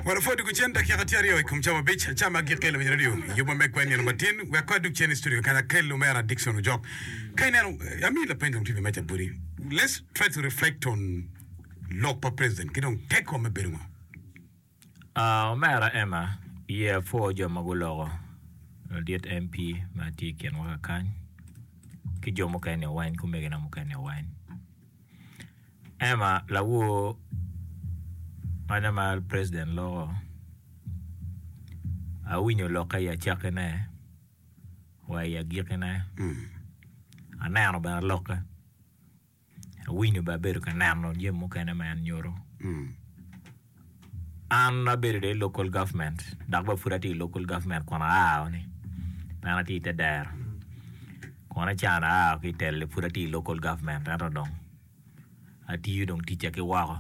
Wanopwod doko cen dakika tye aryo i kom cawa abic aca ma gikelo wi radio i yubwa me kwen nino matin. Wek kong adug cen i studio keken akel lumera Dickson Ojok. Ka ineno, amiyi lapeny dong tye bene meja boti. Let's try to reflect on lok pa president ki dong tekwa me bedo ngo. Ah, omera Emma, iye apwo jo ma guloko ladit MP ma tye i kinwa kakany, ki jo mukene-ni weny, ki omegina mukene-ni weny. Emma lawor ma president loko awinyo lokke i acakkine wa i agikine aneno bene lokke awinyo bene abedo ka neno jami mukene ma en nyuto. An abedo dong i local government dok bene pud atye i local government kun aa ni pien atye i te dero kun acan aa ki i telo ni pud atye i local government ento dong atiyo dong ticca ki woko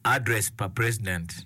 address pa president.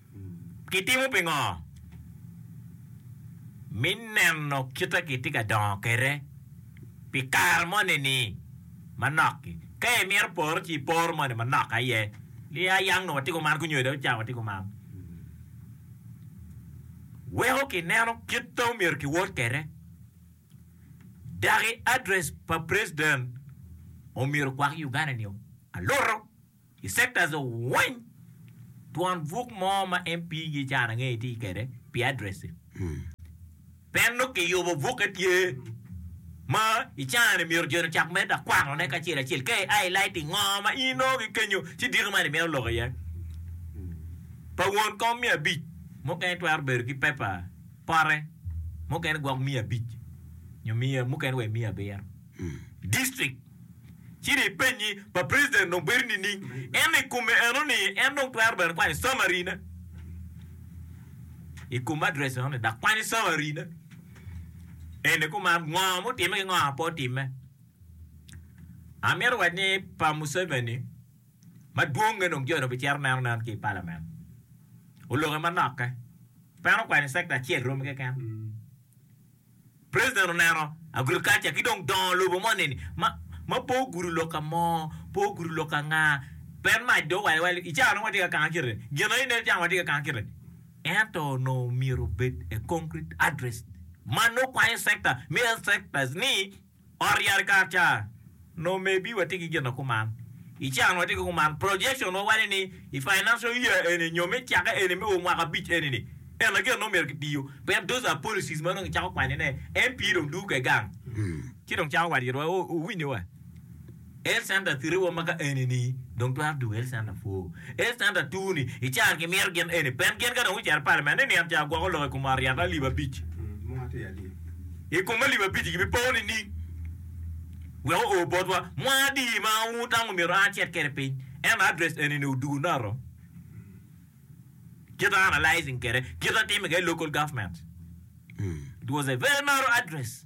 Kitimo pingo me neno kite kitye ka dongo kwede pi kare moni ni manok? Ka imito poro ci ipor moni manok aye ni a yang nongo watye kuman kunyo dong ca watye kuman. Weko kineno kite omyero kiwot kwede daki address pa president omyero okwak Uganda ni alutu. I sectors weng twon buk mo ma MP gi can ange iti kede pi address i. Peno ki yubo buke tye ma i can ni myero joni ocak medo akwano ne kacel acel ka i highlight i ngo ma in nongo ki kenyo ci diko man i mito loko iye. Pa won kom miya abic mukene twero bedo ki paper pote mukene gwok miya abic nyo mukene wa miya abiro. District. Ci ni penyi pa president dong bedo nining? Ento i kome eno ni en dong twero bene kwanyo summary ne i kom address eno ni dok kwanyo summary ne eni kuman ngo mutime ki ngo ma pe otime. Amito wac ni pa Museveni madwong nge dong joni obicito neno nen ki i parliament oloke manoke peno kwanyo sector acel romi keken. President oneno agriculture ki dong dongo lobo moni ni ma ma pe ogudo lok ka mo, pe ogudo lok ka nga, pien mac dong owaco wa ni i cawa dong watye ka kanga kite, gin aye ineno cawa watye ka kanga kite. Ento onongo omyero obed a concrete address ma nongo kwanyo sector me health sectors ni, Ot yat i kar ca no maybe watye ki gin na kuman i ca no watye ki kuman projection wa waco ni i financial year eni nyo me cake eni me mwaka abic eni ni eni na gin no myero ki tiyo pien those are policies ma dong i cako kwanye ne MP dong dugu ke gang ci dong cako wat yito wa owinyo wa. El Santa Three wa ma ka eni ni dong twero dugo El Santa Four. El Santa Two ni i caro ki mito gin eni pen gin ka dong gucito i palament ni niang caa gwoko lok i kom aryaka alip abic i kom alip abic ki bi po nining wek oo bot wa mwa adi ma ur tam omito an acit kede piny ento address eni ni odugo noto kita analysing kede kita a time kede local government it was a very narrow address.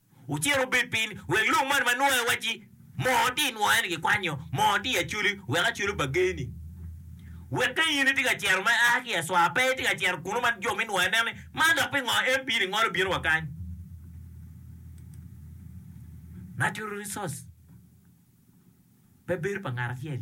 Wucit wubed piny, wek lum man ma nwoyo wacci, 'Moo ti nwoyo-ni gikwanyo, moo ti acoli, wek acoli obagge-ni. Wek ka in itye ka cito ma ia ki i acwar, pe itye ka cito kunnu ma jo me nwoyo neno ni, 'Man dok pingo MP-ni ngolo bino wa kany? Natural resource pe bedo pa ngat acel.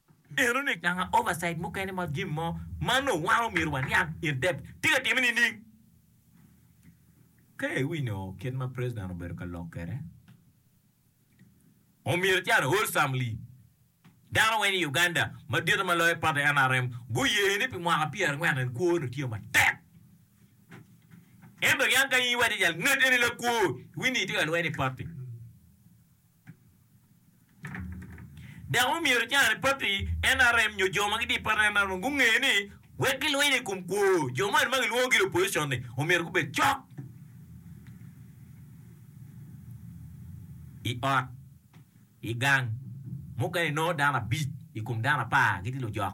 Nenone nanga oversight mukene ma gin mo ma onongo wan omyero waniang in depth tye ka timme nining? Ka iwinyo kit ma president obedo ka lok kwede, omyero ican wholesomely. Dano weng i Uganda, madite ma loyo party nrm, guye ni pi mwaka pyerangwen en kwo onongo tye matek. Ento niang ka in iwaco jal ngete ni lakwo, iwinyo ni itye ka lweny i party. Dok omyero i carani pati NRM nyo jo ma gitye i pati NRM gunge ni wek gilwiny i kom kwo jo moni ma kilwongo gire opposition-ni omyero gubed cok i ot, i gang, mukene inongo dano abic i kom dano apar gitye lujok.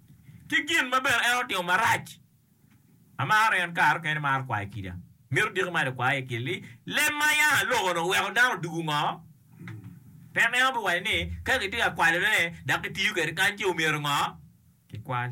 ki gin ma bene en otimo marac. Amaro en kare mukene imaro kwayo kida. Mito diki mac akwayo iye kit ni, Leb ma ayang aloko-nu weko dano odwogo ngo? Pien en obiwaco ni, Ka kitye ka kwalone dok kitiyo kwede kany ce omyero ngo? Kikwal.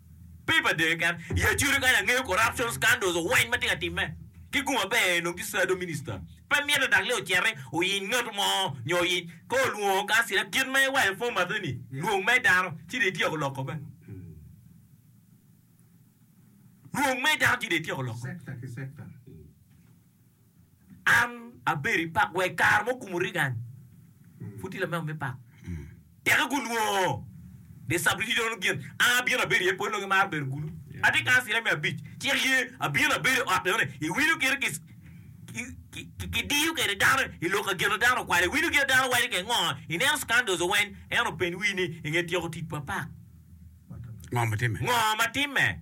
Pip adee keken i acudu kany angeyo corruption scandals oweny ma tye ka timme ki gu maber enong ki sado minister pe mite dok le ociti oyiny ngat mo nyo oyic ka olwongo kansila kit ma iwaco pwony matte ni lwong me dano ci dong ityeko lok kome lwong me dano ci dong ityeko lok kome. An abedo i pak wa i kare mo kumu rigan pud tye lamego me pak teke gunwongo de sabiti dono gin an abino abedo iye pol nongi maro bedo gulu ati kan sira me abic cik ye abino abedo i otte one i wino kite ki ki diyo kede dano i lok ka gina dano okwalo i wino kite dano waco ke ngo i neno scandos oweny en openy wi ni i nge tyeko tic pa pak ngo ma time.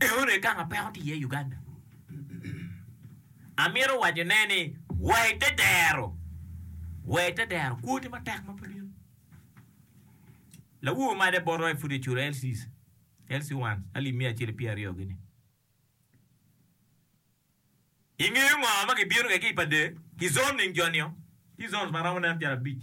Eone gang ma peko tye iye i Uganda. Amito wacone ni wa i te dero, wa i te dero kwoti matek ma pe bino. Lawobi ma de boto aye pud eculo LCs, LC ones alip miya acel ki pyera aryo gini. I ngeyo ngo ma kibino kwede ki i pa dee ki zoning jo nio? Tye zones ma romo nen calo abic.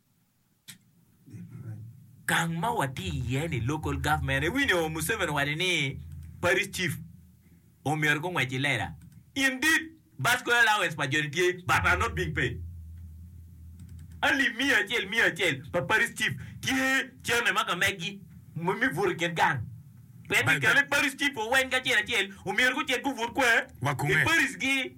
Gang ma watye iye ni local government iwinyo Museveni owaco ni parish chief omyero gungwec i lela indeed bus school allowance pa joni tye but are not being paid alip miya acel miya acel pa parish chief tye chairman ma kamegi me buto i kin gang pe me kele parish chief oweng ki acel acel omyero gucit gubut kwer i parish gi.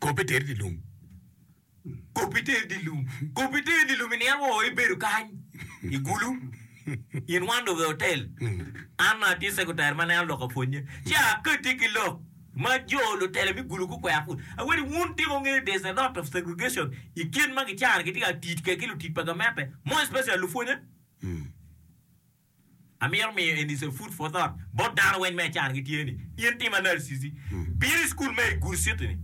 Kop pe teri dye lum. Kop pe teri dye lum. Kop pe teri dye lum i nino woo ibedo kany i gulu in one dong i otel. An ma atye sekutari ma nene aloko pwonye ci akati ki lok ma jo lutela me gulu gukwera put. Aweri wun tika wungeyo there's a lot of segregation i kin ma gicano gitye ka tit kwedgi lutit pa gamente more especially lupwonye? Amito miyo eni ca food for thought bot dano weng ma i caro gitye ni, in tim analysis-i. Bino i cukul me Good City-ni,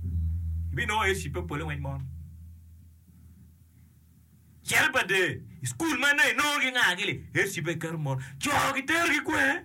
ibinongo iye cibbe pole weng mono. Cel pa dee, i cukul meno inongo gingagi li, iye cibbe iketo mono. Co giterogi kwer.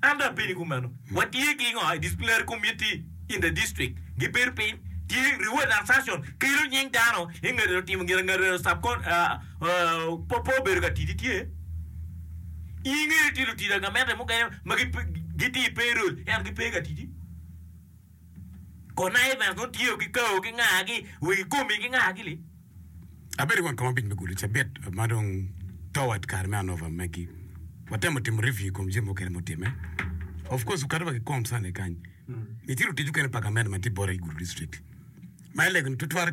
Ento abedo i kumeno, watye ki ngo i disciplinary committee in the district gibedo piny tye reward and sanction kelo nying dano i nge lutimo gin ange subcon po po bedo ka tidi tye i nge tye lutida gamente mukene ma gitye i payroll ento gipe ka tidi. Connivance nongo tiyo ki kawo ki ngagi wa i komi ki ngagi li. Abedo i wang kom abic me gulu cabit ma dong toward kare me anova magi. Watemo timo review i kom jami mukene ma otimme. Of course wakato wa ki kom Sunday kany. Nitye lutic mukene pa gamente ma nitye bota ki gulu district ma i lego-ni tutwal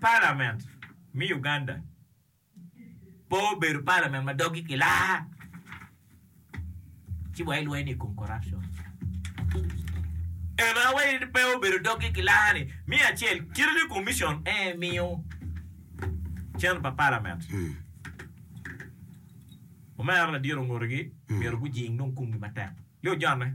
Palament me Uganda pe obedo palament ma doggi kilaa ci wa ilweny ni ikom corruption. Eno awaci ni pe obedo doggi kilaa ni me acel kite ni commission ee miyo cen pa palament omera ladiro ngutigi myero gujing dong kumgi matek. Yo jone.